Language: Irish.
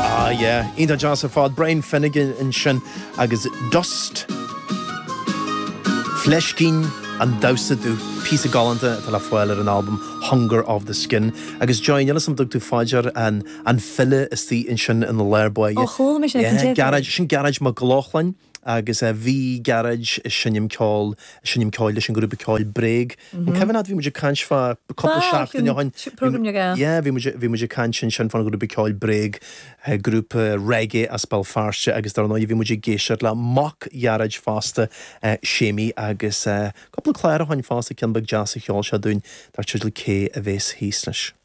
Ah yeah, iontach deas ar fad. Brian Finnegan ansin agus Dust. Fleiscín an damhsa dubh, píosa galánta atá le fáil ar an albam Hunger of the Skin. Agus Joy, níl 'fhios a'm, dtug tú fá dear an file istigh ansin ina lár báire. Oh, chuala mé sin ar an tape deck. Yeah, Gearóid, sin Gearóid Mac Lochlainn. agus bhí Gearóid ag seinm ceoil ag seinm ceoil leis an grúpa ceoil bréag an cuimhin leat bhí muid ag caint fá cúpla seachtain ó shin yeah bhí muid bhí muid ag caint ansin fán grúpa ceoil bréag grúpa reggae as Béal Feirste agus dar ndóigh bhí muid ag éisteacht le mac Ghearóid fosta Séimí agus cúpla clár ó shin fosta ceann beag deas a sheol sé dúinn dar teideal Cé a bhéas thíos leis.